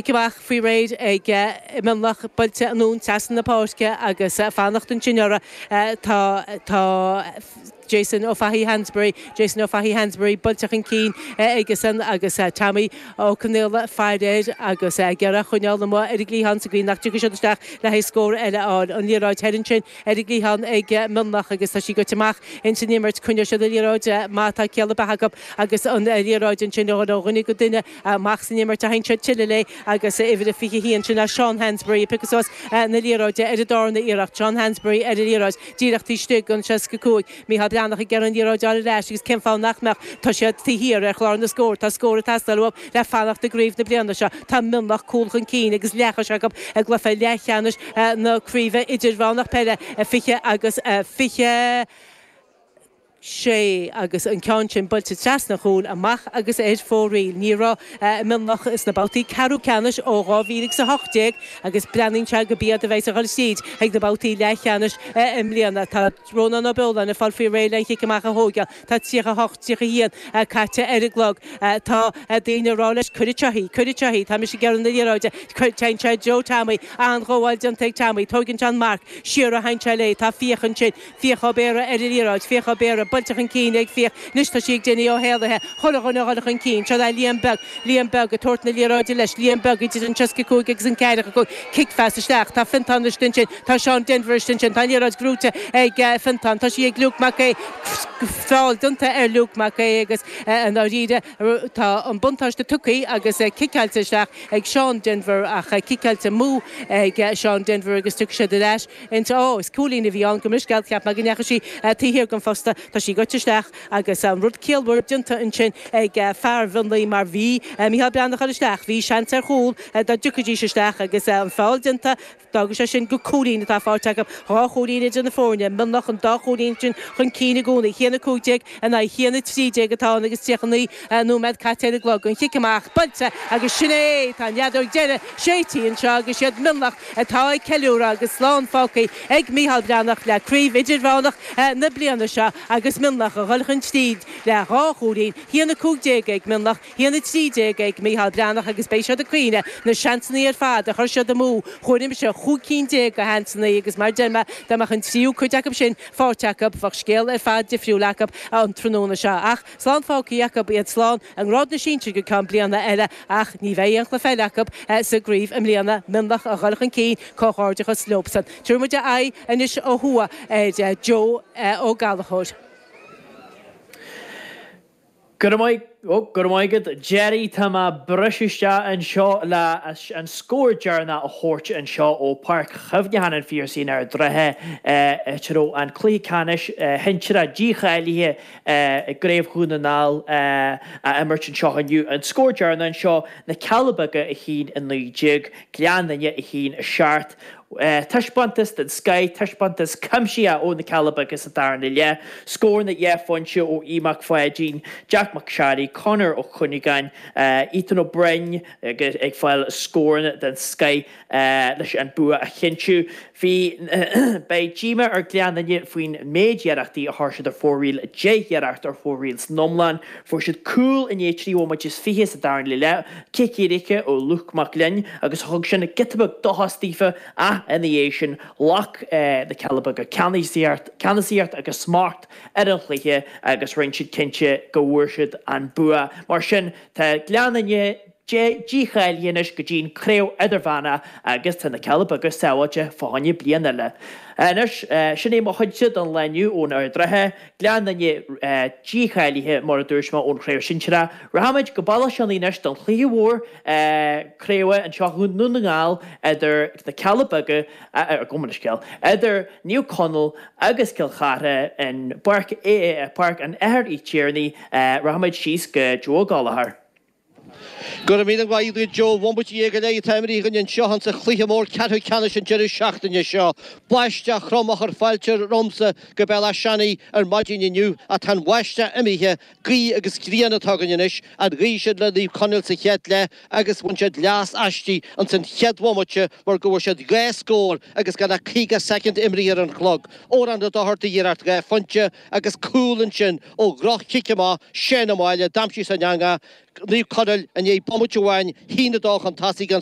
amach faoi réir ag Mionlach buailte anonn, trasna na páirce agus fanacht ansin orthu. Tá Jason Ó Fathaigh Hansberry, Jason Ó Fathaigh Hansberry buailte chun cinn aigesan agus Tommy Ó Conaola ag faire air agus ag iarraidh a choinneáil amuigh ar an gcliathán sa gcaoi nach dtiocfaidh siad isteach le haghaidh scór eile a fháil. An liathróid thoir ansin ar an gcliathán ag Mionlach agus tá sí goite amach ins an imirt. Coinneoidh siad an liathróid má tá ciall ar bith acu agus an liathróid ansin ó dhuine go duine. amach san imirt a théann siad tuilleadh léi agus uimhir a 21 sin é Seán Hansberry ag piocadh suas na liathróide ar an darna iarracht, Seán Hansberry ar an liathróid díreach taobh istigh den 65, Micheál Breathnach ag iarraidh an liathróid a fháil ar ais agus cén fáth nach mbeadh, tá siad taobh thiar ar chlár na scór, tá scór ag teastáil uathu le fanacht i gcraobh na bliana seo, tá Mionlach cúl chun cinn agus leathchois acu i gcluiche leathcheannais na craoibhe idirmheánach peile, 20 agus 21. sé agus an ceann sin buailte trasna an chúil amach agus ar fóraoil. Ní raibh Mionlach sna babhtaí ceathrú ceannais ó 2000 agus 18 agus breathnaíonn sé gurb iad a bheas ag dul tríd chuig na babhtaí leathcheannais i mbliana. Tá Rónán Ó Beoláin ag fáil faoi réir le an chic amach a thóigeáil. Tá 38, 31 caite ar an gclog. Tá daoine ag rá leis Cuir anseo í! Cuir anseo í! Tá mise ag iarraidh na liathróide. Téann sé i dtreo Tommy. An-ghabháil déanta ag Tommy. Tóigeann sé an marc. Siar a théann sé léi. Tá Fiach ansin. Fiach Ó Béarra ar an liathróid, Fiach Ó Béarra, buailte chun cinn ag Fiach, anois tá sí ag déanamh ó shéalaithe, chuile dhuine a dhul chun cinn, seo é Liam Beag, Liam Beag ag tabhairt na liathróide leis, Liam Beag idir an 65 agus an 45, cicphas isteach, tá Fiontán istigh ansin, tá Seán Denvir istigh ansin, tá an liathróid gnóite ag Fiontán, tá sí ag Luke Mac Aodha, feall déanta ar Luke Mac Aodha agus i ndáiríre tá an buntáiste tugtha agus ciceáilte isteach ag Seán Denvir ach ciceáilte amú ag Seán Denvir agus tiocfaidh siad ar ais. Inse, Ó, is cúilín a bhí ann gabh mo leithscéal, cheap mé go ndeachaigh sí taobh thiar den phosta, tá sí goite isteach agus an rud ciallmhar déanta ansin ag fear Mhionlaigh mar bhí Mícheál Breathnach thoir isteach, bhí seans ar chúl dá dtiocfaidís isteach agus an feall déanta, d'fhágfadh sé sin gur cúilín atá faighte acu, dhá chúilín idir na foirne, Mionlach an dá chúilín sin chun cinn i gcónaí. A haon a 15. In aghaidh a haon a 13 atá ann agus 39 nóiméad caite ar an gclog. An chic amach, buailte agus sin é! Tá an fheadóg deiridh séidtí anseo agus is iad Mionlach atá ag ceiliúradh agus slán fágtha ag Micheál Breathnach le Craobh Idirmheánach na bliana seo agus Mionlach a dhul chun tríd le dhá chúilín. A haon a 15 ag Mionlach. A haon a 13 ag Micheál Breathnach agus beidh siad ag caoineadh na seansannaí ar fad a chuir siad amú, chomhair mise, chúig cinn déag de sheansannaí agus mar deir mé, dá mbeadh an tríú cuid acu sin faighte acu, bheadh scéal ar fad difriúil acu an tráthnóna seo. Ach slán fágthaí acu iad, slán i ngrád na sinsir go ceann bliana eile ach ní bheidh aon chluiche eile acu sa gcraobh i mbliana, Mionlach a dhul chun cinn, comhghairdeachas leobsan. Tabharfaidh muid aghaidh anois ó thuaidh ar Joe Ó Gallchóir. Go, go raibh maith agat. Jerry, tá mé ag briseadh isteach anseo leis an scór deireanach a thabhairt anseo ó Páirc Chuimhneacháin an Phiarsaigh in Ard an Rátha, áit a raibh an cluiche ceannais sinsearach dícháilithe i gCraobh Dhún na nGall á imirt anseo inniu. An scór deireanach anseo, Na Cealla Beaga 1-19, Gleann Fhinne 1-7. taispeántas den scoith, taispeántas cuimsithe ó na Cealla Beaga sa darna leath, scóranna dhá phointe ó Aodh Mac Pháidín, Jack Mac Sharry, Conor Ó Cuinneagáin, Ethan Ó Broin ag fáil scóranna den scoith leis an bua a chinntiú. Bhí Beidh díomá ar Gleann Fhinne faoin méid iarrachtaí a chuir siad ar fóraoil, deich iarracht ar fóraoil san iomlán. Fuair siad cúl i ndiaidh trí bhomaite is fiche sa darna leath. Cic éirice ó Lúc Mag Fhloinn agus thug sin giota beag dóchais daofa ach ina dhiaidh sin ghlac na Cealla Beaga ceannasaíocht agus smacht ar an chluiche agus rinne siad cinnte go bhfuair siad an bua. Mar sin tá Gleann Fhinne dícháilithe anois go dtí an Craobh Idirmheánach agus tá na Cealla Beaga sábháilte fá choinne bliain eile. Anois, sin é mo chuidse don lá inniu ó Ard an Rátha. Gleann Fhinne dícháilithe, mar a dúirt mé, ón chraobh sinsearach. Rachaimid go Béal Átha Seanaidh anois don chluiche mhór craoibhe anseo i nDún na nGall idir na Cealla Beaga, gabh mo leithscéal, idir Naomh Conaill agus Cill Chartha i bPáirc an Athar Uí Thiarnaigh. Rachaimid síos go Joe Ó Gallchóir. Go raibh míle maith agat Joe, bhomaite dhéag go leith atá imeartha againn anseo in sa chluiche mór ceathrú ceannais an deireadh seachtaine seo. Báisteach throm a chuir fáilte romhamsa go Béal Átha Seanaidh ar maidin inniu ach tá an bháisteach imithe. Gaoth agus grian atá againn anois. An ghaoth sin le Naomh Conaill sa chéad leath agus bhain siad leas aisti in san chéad bhomaite mar go bhfuair siad dhá scór agus gan ach caoga soicind imeartha ar an chlog. Odhrán Ó Dochartaigh iarracht dhá phointe agus cúl ansin ó dhroch-chic amach Shane O'Malley d'aimsigh sé an eangach Naomh Conaill i ndiaidh bomaite amháin 1-2 chun tosaigh an